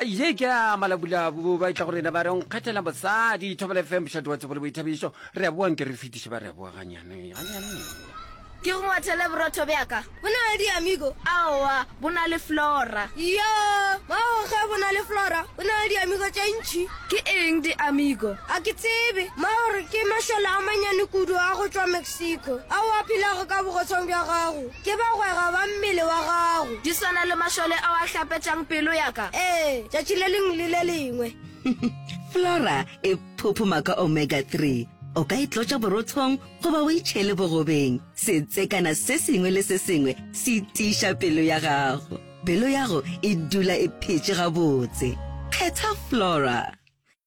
ye ke a malabula bo ba itla go rena ba re nkgethela mosadi ithobela fm bošadi wa tsebo le boithabišo re a boang ke re fetiše ba re a boa ganyane ganyane ke go ngwathele borotho bjaka bo na le diamigo aowa bo na le flora yo maoge bo na le flora bo na le diamigo tše ntšhi ke eng diamigo a ke tsebe maore ke mašole a manyane kudu a go tšwa mexico ao a phelago ka bogotshong bja gago Ke bagwera ba mmele wa gago. Di swana le mašole ao a hlapetšang pelo ya ka. Ee, tšatši le lengwe le le lengwe. Flora e phophoma ka omega 3. O ka e tlotša borothong goba o e tšhele bogobeng. Setsekana se sengwe le se sengwe se tiiša pelo ya gago. Pelo ya go e dula e phetše gabotse. Kgetha Flora.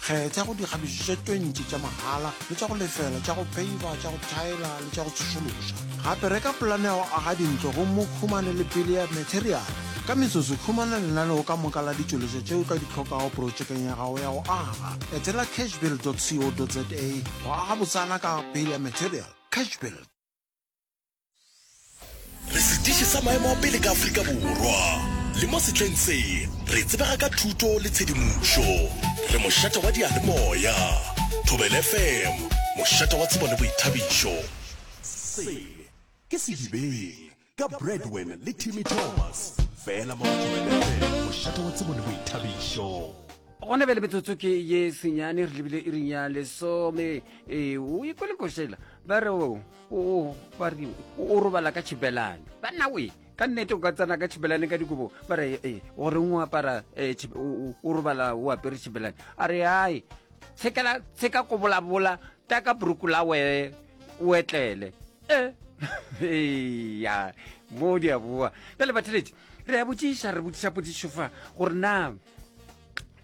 kgetha go dikga tše 20 tša mahala le tša go lefela tša go peiba tša go thaela le tša go tsošološa gape reka polane ya go aga dintlo go mo khumane le pele ya material ka metsotso khumana lenaneo ka moka la ditšweletšo tše o tla di tlhokago porotšekeng ya gago ya go aga etela cashbuild co za go aga botsana ka pele ya material cashbuild Re sediši sa maemo a pele ka Afrika Borwa le mo sehleng se. Re tsebega ka thuto le tshedimošo. Re mošate wa diyalemoya, Thobela FM, mošate wa tsebo le boithabišo. Se ke Sedibeng ka Bradwen le Timmy Thomas, fela mo go Thobela FM, mošate wa tsebo le boithabišo. gona bjale metsotso ke ye senyane re lebile iring ya lesome ee o ikwe lekošela ba re o o ba re o robala ka tšhibelane ba nna we ka nnete o ka tsena ka tšhibelane ka dikobo ba re e goreng o apara eh, tšhibe- o o- o robala o apere tšhibelane a re ai tshekela tsheka kobolabola taka buruku la we o etlele e eya mo di a boa bjale batheletši re a botšiša re botšiša potšišo fa gore na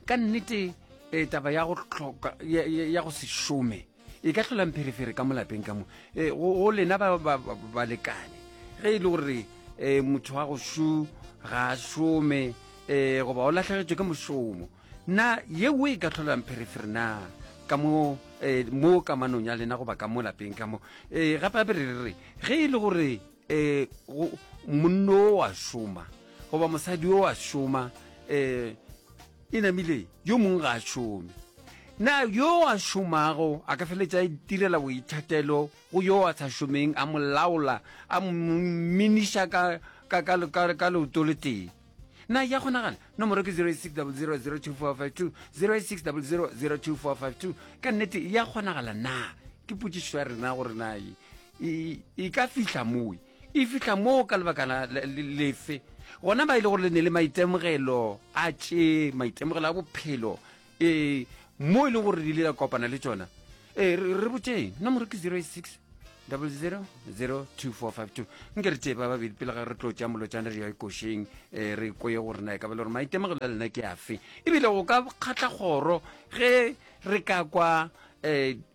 ka nnete eh, taba ya go hloka ya- ya ya go se šome e ka hlolang pherefere ka molapeng ka mo e, go lena balekane ge e le gore e, motho wa go shu ga a šome e, goba o latlhegetšwe ke mošomo na yeo e ka hlolang pherefere na ka mo mo kamanong ya lena goba ka mo lapeng ka mo um gape gape re re re ge e le gore um monno o a šoma goba mosadi o a šoma um E namile, yo mongwe ga a šome. Na yo a šomago a ka feletša a itirela boithatelo go yo a sa šomeng, a mo laola, a mo miniša ka, ka, ka, ka, ka leoto le tee? Na ya kgonagala? Nomoro ke 086002452, 086002452. Ka nnete, ya kgonagala na? Ke potšišo ya rena gore na e, e, e ka fihla mowe. e fihla moo ka lebaka lefe gona ba e le gore le ne le maitemogelo a tše maitemogelo a bophelo um mo e leng gore di ile la kopana le tsona ee re botseng nomoro ke 06 000242 nke re tee ba babedi pele ga re tlo tša molotšane re ya ikošeng um re koye gore na e ka ba le gore maitemogelo a lena ke afe ebile go ka kgatlha kgoro ge re ka kwa um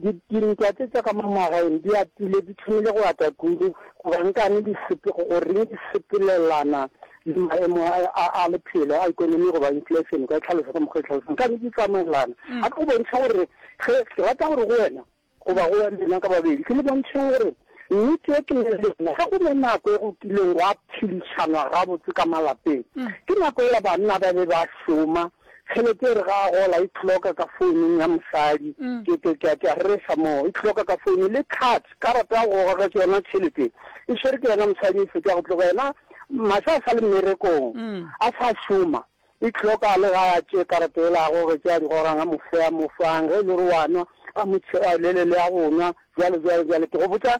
Di, dintwa tše tša ka mo magaeng di atile, di thomile go ata kudu, goba nkane di sepe, go reng di sepelelana le maemo a, a, a lephelo, a ekonomi goba inflation, ka e tlhalosa ka mokgwa e tlhalosa, nkane di tsamaelana. Mm. Gape go bontšha gore ge ke rata gore go wena, goba go lena ka babedi, ke le bontšheng gore nnete ye ke neng le yona, ge go ne nako e go kileng gwa phedišanwa gabotse ka malapeng, mm. ke nako ya banna ba be ba šoma, Tšhelete e re ga a gola e cloka ka founung ya mosadi, ke ke ke ke resa moo e cloka ka founu le card karata ya go goga yona tšhelete e swere ke yena mosadi e fetwa go tloga yena masa a sa le mmerekong a sa šoma e cloka le ga a tše karata e la goge tša di gorang a mo fe a mo fang ge e le rowana a mo tšhelele le ya go nwa jalo jalo jalo ke go botsa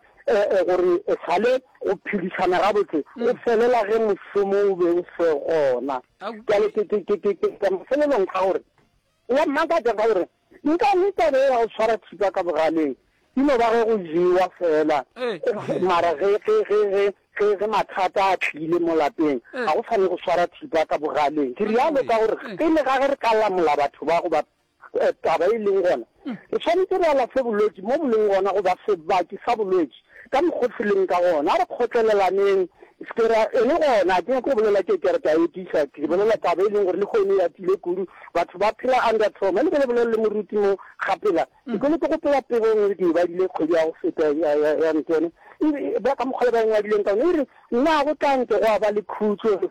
gore sale go phedišana gabotse go felela ge mošomo o be o se gona Bjale ke, ke, ke, ke, ke tla mafelelong ka gore wa mmakatša ka gore nka le taba ye ya go tshwara thipa ka bogaleng e no ba ge go jewa fela, mara ge, ge, ge, ge, ge, ge mathata a tlile mo lapeng ga go tshwane go tshwara thipa ka bogaleng. Ke realo ka gore pele ga ge re ka lamola batho ba go ba Taba e leng gona, re swanetše re alafe bolwetši mo bo leng gona goba sebaki sa bolwetši ka mokgo se leng ka gona. A re kgotlelelaneng. Stera e le gona, ga ke nyake go bolela tše kereke a e tiša, ke bolela taba e leng gore lehono e atile kudu. Batho ba phela under trauma. Le be le bolele le moruti mo gapela, ke kweletse go pela pegong e re ke e badile kgwedi ya go feta ya ntone, e re ba ka mokgwa le ba e ngwadileng ka gona, e re, Nna go tla nke gwa ba le khutšo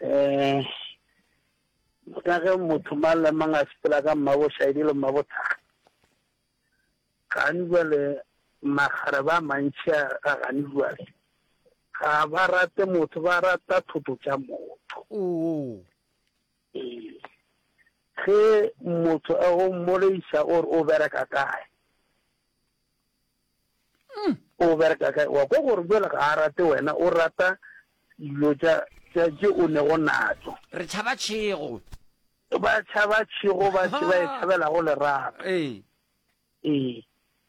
um ka ge motho mang le mang a sepela ka mmabošaedi le mmabothaga gane jale magare ba mantšhi a gane jale ga ba rate motho ba rata thoto tša motho oo ge motho a go mmoleisa o re o bereka kae Mm. o bereka kae wa kwa gore jela ga a rate wena o rata dilo tša tša tše o ne go natso re tšhaba tšhego ba tšhaba tšhego ba tše ba e tšhabelago lerato ee ee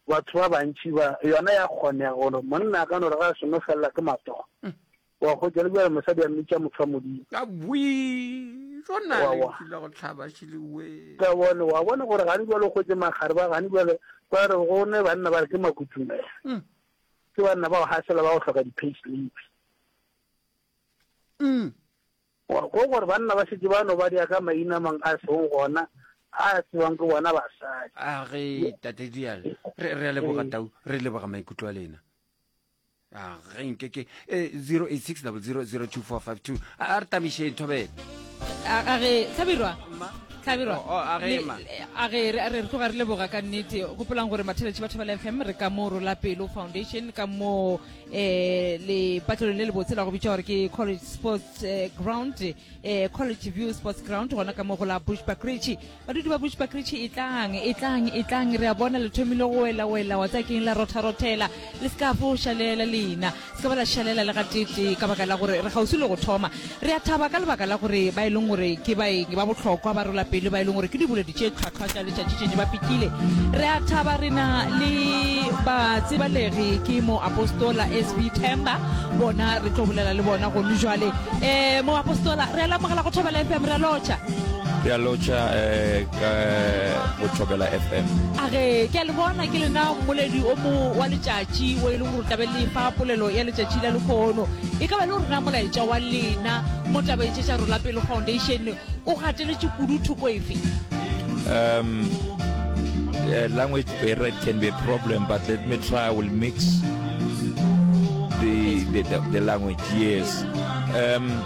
batho ba bantši ba yona ya kgonega gore monna a ka no re ga a seno felela ke matogo mm. O a hwetša, le bjale mosadi a mmitša motho wa Modimo. Ka boitšo na le nkile go hlaba šiliweng? Ka bone, o a bona gore gane bjale o hwetše makgare, ba gane bjale ba re go ne banna ba re ke makutumela. Ke banna ba go hasela ba go hloka di-payslip. Wa kwa gore banna ba šetše ba no ba dia ka maina mang a sego gona a tsebang ke bona basadi. A ge Tate Dial, re a leboga Tau, re leboga maikutlo a lena. Ah, ge nke ke eh, 086 002 a re tamiše thobele a re tlhabirwa tlhabirwa oh, oh, a re re tloga re leboga ka nnete gopolang gore matheletše ba thobela fm re ka mo rola pelo foundation ka mo um lepatlelong le le botse la go bitša gore ke college sports eh, ground um college view sports ground gona ka mo go la bush bakritšhi Badudi ba Bushbuckridge, etlang, etlang, etlang, re a bona le thomile go wela, wela, wa tsa keng la rotharothela, le se ka fo šalela lena, se ka ba la šalela le gateetee, ka baka la gore re kgauswi le go thoma. Re a thaba ka lebaka la gore ba e leng gore ke baeng ba bohlokwa ba rolapele, ba e leng gore ke diboledi tše tlhwatlhwa tša letšatši tše di ba fihlile. Re a thaba re na le batsebalegi ke moapostola SB Themba, bona re tlo bolela le bona gonu jwale. Um moapostola, re a lamogela go thobela FM, re a lotšha. ke a lotšha eh, ka botlhokela fm a re ke a le bona ke lena mmoledi o mo wa letšatši o e leng gore tabe le fa polelo ya letšatši la lekgono e ka ba le gorena molaetša wa lena mo tabaetše tša rola pele foundation o gateletše kudu thoko efe um uh, language barrier can be a problem but let me try i will mix the, the, the, the language yes um